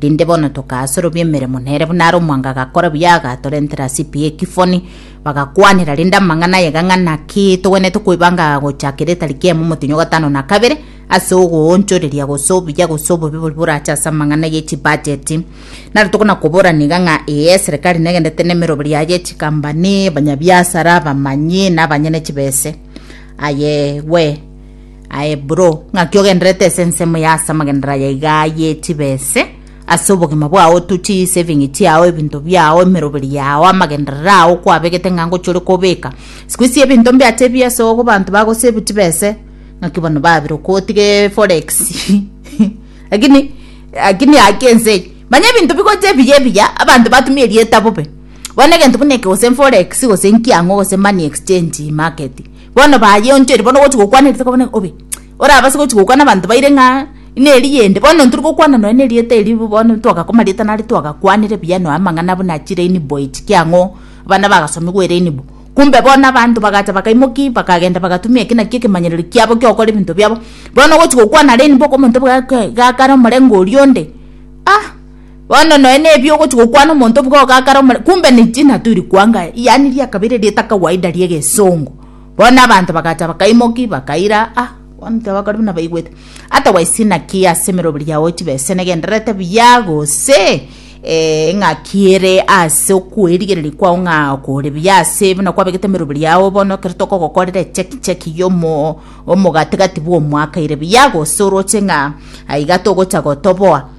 Rinde bono tokasorobia emeremo nere buna are omwango agakora buya agatorentera ase epiya ekifoni bagakwanera rinde amang'ana ayega ng'a naki togwenerete koibanga gochaka eretari kiemo omotenyo gatano na kabere ase ogoonchoreria gose obuya gose obobe boria borache ase amang'ana ye chibajeti naro tokona koborana iga ng'a ee eserekari negenderete nemeroberi yaye echikambani abanyabiasara abamanyi na abanyene chibese aye we Aye bro, ng'aki ogenderete ase ensemo ya ase amagenderero aya iga ye chibese, ase obogima bwao tu, chi saving chiao, ebinto biao, emeroberi yao, amagenderero ao kwabegete ng'a ngochi ore kobeka. Siku hizi ebinto mbiacha ebi ase ogo abanto bago save chibese, ng'aki bono babire oko otiga eforex. Lakini, lakini haki ense eye. Manya ebinto bigocha ebiya ebiya, abanto batumia erieta bobe. Bono egento buna eke gose eforex, gose enkiang'o, gose money exchange market. Bono bayeonchorire bono ogochi gokwana erieta okabona ng'a obe, orabase gochi gokwana abanto baire ng'a neri yende. Bono ntiri gokwana nonya na erieta erio bo bono ntwagakwa marieta nare twagakwanire buya nonya amang'ana buna chi rainbow echi kia ang'o abana bagasomigwa erainbow. Kumbe bono abanto bagacha bakaimoki bakagenda bagatumia eki nakio ekemanyerero kiabo kia ogokora ebinto biabo. Bono ogochi gokwana rainbow okomonto bwa gaa igaa kare omorengo oria onde ah. Bono nonya nebio ogochi gokwana omonto bwo ogakara omore kumbe niji naturi kwanga yani riakabere rieta kawaida ria egesongo bono abanto bagacha bakaimoki bakaira ah bono tibakori buna baigwete otherwise naki ase emeroberi yao chibe ase negendererete buya gose eh ng'aki ere ase okoerigereria kwao ng'a kore buya ase buna kwabegete emeroberi yao bono ekero tokogokorera echeki cheki ya omo omogatigati bwa omwaka ere buya gose oroche ng'a aiga togocha gotoboa.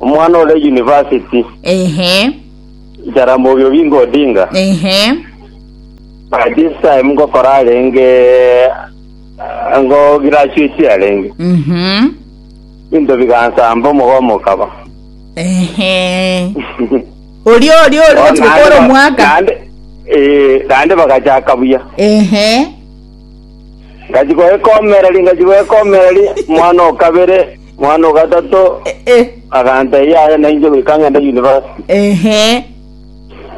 Omwana ore university, ehe Jaramogi Oginga Odinga. ehe By this time ngokora arenge eh, ngo graduate arenge. mhm Into bigansamba omogomo okaba. ehe orio orio ori gochi gokora omwaka Naende eh naende bagachaka buya. ehe Ngachi goekomereri ngachi goekomereri mwana okabere Mwana o gatato Eh, agantebia, Yaya nainche goika ng'ende yunivasiti. ehe.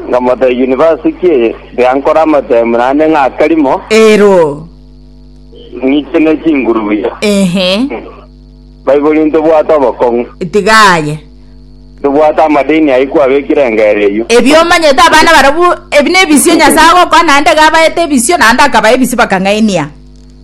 Nkamotebia, Yunivasiti ki eye? Tiga nkore amatemu naende ng'a akarimo Ero. ng'ichene chingurubia. Ehe. Baibori ntobwate obokong'u. Tiga aye. Tobwate amadeni ayio kwabekire engero eyio. Ebio omanyete abana barabwo ebi nebisio Nyasae agokoa naende gabaete ebisio naende akabae ebisio bakang'ainia.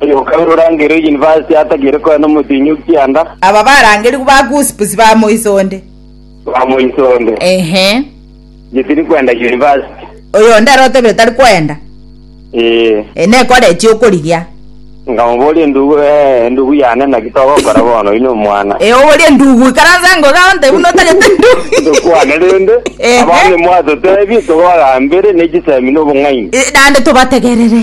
Oyoka ore orangeire University atagire koya nomotienyi o kianda. Aba barangerigwe ba Gossips ba moiso onde. Ba moiso onde. Ehe. Inche tiri kwenda University. Oyo onde aro otebire tari kwenda. Ee. E nekoreti okorigia. Nkamoboria endugu, ee, endugu yane naki togokora bono, oyi nomwana. E oborie endugu, ikaransa ngo iga onte buna otagete endugu. Tokwane rende. Ehe. Abande mwatotebie togagambere ne chisemi nobong'aini. E, naende tobategerere.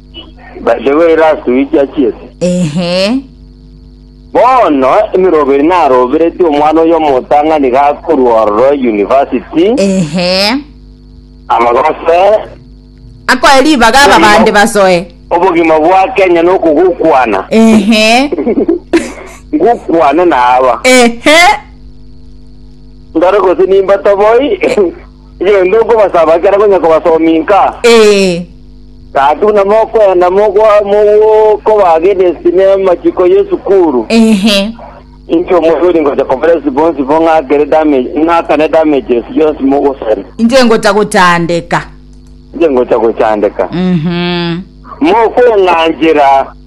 By the way, last week achiete. Ehe. Bono emiroberi narobereti omwana oyo omotang'ani gakorwa ororo university Ehe. amagose Akoe ribaga aba bande basoe. obogima bwa Kenya nokogokwana Ehe. ngokwane naba Ehe. ndore gose nimbatoboi Genda okobasaba ekero akonya kobasomia inka. Ee. Gaki buna mokwenda mogwa- mogokoba gede sine amachiko y'esukuru, Ehe. inche omonto oria ngocha kobera ase bonsi bo ng'akere damage, ng'akane damages yonsi mogosari. Inche ngocha gochandeka. Inche ngocha gochandeka. Mhm. Mokweng'anchera.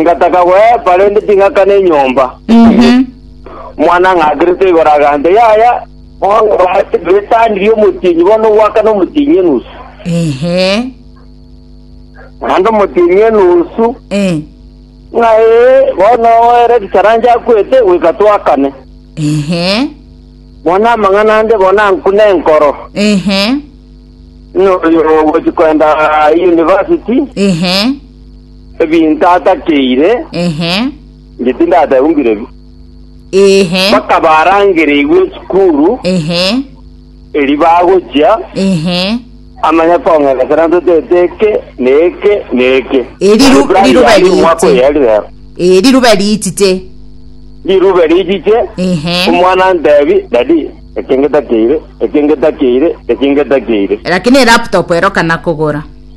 Ngataka goepa, rende ting'akana enyomba. Omwana ng'akerete igoro agancha, Yaya, bono bache betanirie omotienyi, bono ogwakana omotienyi enusu. Ehe. Naende omotienyi enusu, Eh. ng'a ee, bono ere richaranche akwete, goika twakane. Ehe. Bono amang'ana ande bono ankune enkoro. Ehe. Ng'a oyo ogochi koenda university, Ehe. Ebinto atakeire Ehe. inche tindateba buna bire bi. Ehe. Mpaka barangereigwe esukuru Ehe. eri bagochia Ehe. amanye kong'enta sana totete eke na eke na eke. Eri Yaani ru- plan riruba yaye riiti. omwaka oyo yari rero. Eh, riruba riitite. Riruba richiche Ehe. omwana antebi dadi eke ngetakeire eke ngetakeire eke ngetakeire. Lakini elaptop erokana kogora.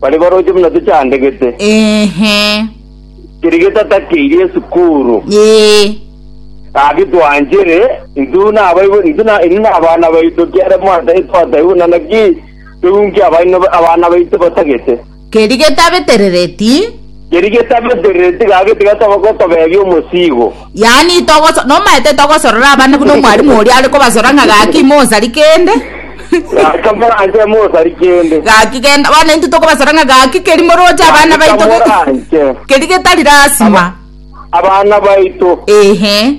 Baria baroche buna tochandegete. Ehe. Keria getatakairi esukuru. Ee. Gaki twanchere, intwe nabaibwe, intwe na inwe nabana baito kiara mwatae twatae buna naki tounke abaino abana baito batagete. Keria getabeterereti. Keria getabeterere tigake tigatoba gotobeebia omosiigo. Yaani togoso nomaete togosorora abana buna omwalimu oria are kobasora ng'a gaki ime osari kende Gaki tomoranche mosari kende. gaki genda bono intwe tokobasora ng'a gaki keri moroche abana Gaki baito ge- tomoranche. keri getari lasima Abana baito. ehe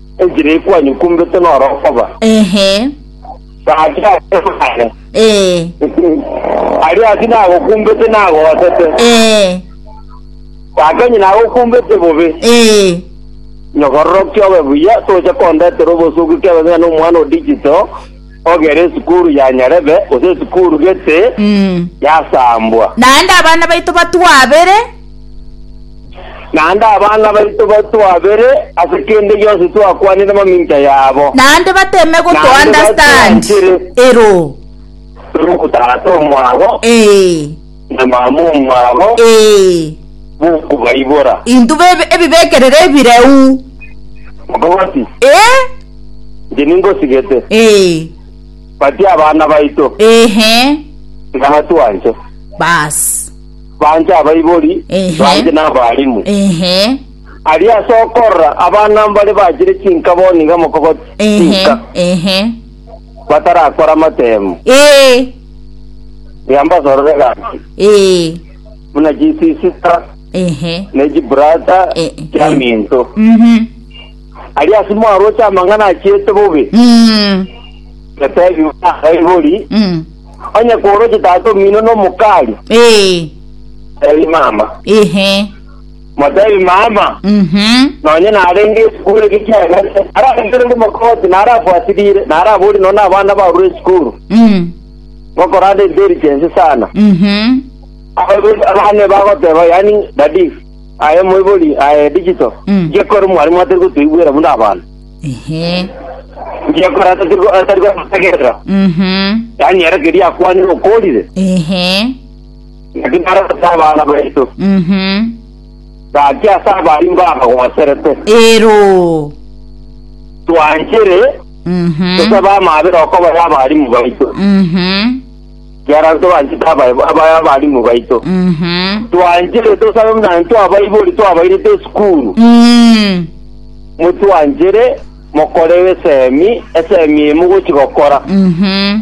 Enchera eye kwanyokumbete noro okoba. Ehe. Gaki ase mare. Ee. Aria ati nagokumbete nagoosete. Ee. Gaki onye nagokumbete bobe. Ee. Nyokororokia obe buya toche kondetera obosugi kebe ng'ina na omwana o digital. ogere esukuru ya nyarebe, gose esukuru gete yasambwa. Naende abana baito batwabere. Naende abana baito batwabere ase kende gionsi twakwanire amamincha yabo. Naende bateme go to Naende understand. batuanchire. Ero. Tore ogotara tomwabo. Ee. na bamomba abo Ee, bokobaibora, intwe bebe- ebibekerero ebireu. Moka bati, Ee, Inche ningosigete, ee, batie abana baito, ehe, nabatwanche. basi, Banche abaibori, Ehe. banche n'abarimu. ehe, Aria ase okorora abana mbare bachire chinkaboni iga mokogoti ehe, chinka. ehe, batarakora amatemu, Ee, tiga mbasorore gaki, ee, buna chisisita ehe, ne chiburata Eh, eh. chia minto. mhm, Aria ase mwaroche amang'ana achiete bobe, mm, getebi baibori, mm, onye kworoche tata omino nomokari, ee, tebi mama. ehe, Motebie mama, Mhm. nonye narenge esukuru eke kiagete, ararengere ore mokoti, narafuatirire, narabori nonya abana barure esukuru, Mm. gokoranda intelligence sana. Mhm. abane bagoteba yani dadi aye moibori aye digital Mm. ngekore mwarimu atari gotoigwera buna abana Ehe. ngekora atari go- atari gotegerera Mhm. yani ere keria akwanire okorire Ehe. Naki narabete abana baito, Mhm. gaki ase abari mbabagoserete. Ero. Twanchire Mhm. tosabe amaabera okoba y'abarimu baito, Mhm. kiara tobanchete aba- aba y'abarimu baito. Mhm. Twanchire tosabe buna ntwabaibori twabairete esukuru, Mm. motwanchire mokore esemi, esemi eye mogochi gokora. Mhm.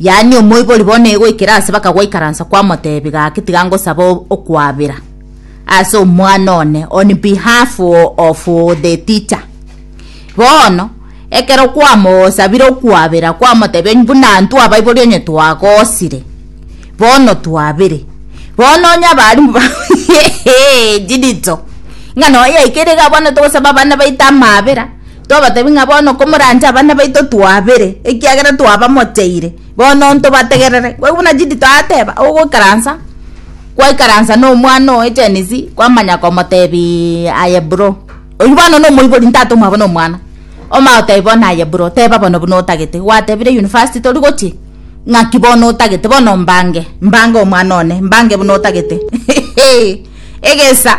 Yaani omoibori bono egoikera aase bakagoikaransa kwamoteebia gaki tiga ngosaba o- okwabera ase omwana one on behalf o- of the teacher bono ekero kwamosabire okwabera kwamotebia onye buna intwe abaibori onye twagosire bono twabere bono onye abaarimbu ba chidito ng'a noyo yaikire iga bono togosaba abana baito amabera. Tobatebi ng'a bono komoranche abana baito twabere, ekiagera twabamocheire, bono ntobategerere. Boigo buna Judith ateba, ogoikaransa gwaikaransa nomwana oye Janice, kwamanya komotebia, aye bro. Oyio bono nomoibori ntatomwa bono omwana. Omanye otebi bono aye bro, teba bono buna otagete. Gwatebire university tori gochia, ng'aki bono otagete, bono mbange, mbange omwana one, mbange buna otagete. Egesa.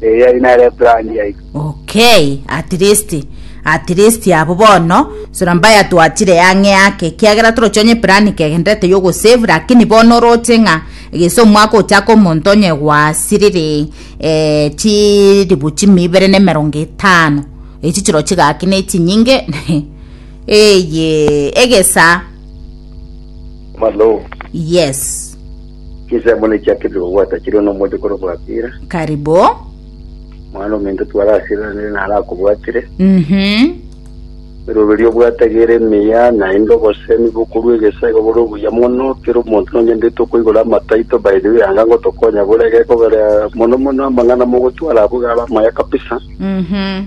Erio yari nere brand yaito. Okay, at least at least abo bono sora mbaya twachire yang'e yake kiagera toroche onye plan kegenderete yogo save lakini bono oroche ng'a egese omwaka ochaka omonto onye gwasirire eh, chiribu chimi ibere na emerongo etano echi chiro chigaki na echinyinge eye egesa Malo. yes Chinsemo nechiakerire kobwata chire nomoche korokwa Apira, Karibu. mwana ominto twarasiranire narakobwatire. Mhm. Eroberio obwate egere emiya, naende obosemi bokorwa egesa igo bore obuya mono. Kera omonto nonyendete okoigora amataito by the way anga ngotokonya bore gekogera mono mono amang'ana mogotwara abwo igare amaya kabisa. Mhm.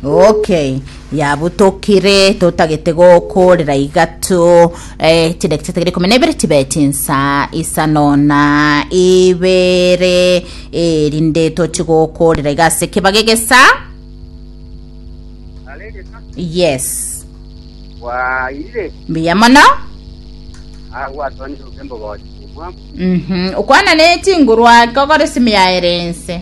Okay, yabutokire totagete gokorera igato eh, chidakika chitagere ikumi na ibere chibe chinsa isano na ibere eh, rinde tochi gokorera iga ase ekebaga egesa yes bwaire mbuya mono agwatonire obembo gochi omwamu Mhm, okwana ne chinguru ake okore simi yaere ense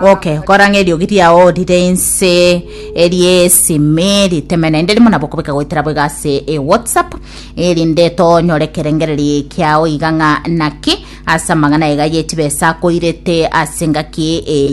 Oke, korang'a eriogi riao rire inse eriesimi riteme naende rimo nabo kobeka goetera boiga ase e whatsapp erinde tonyore ekerengereri kiao iga ng'a naki ase amang'ana aiga ye chibesa akoirete ase engaki eye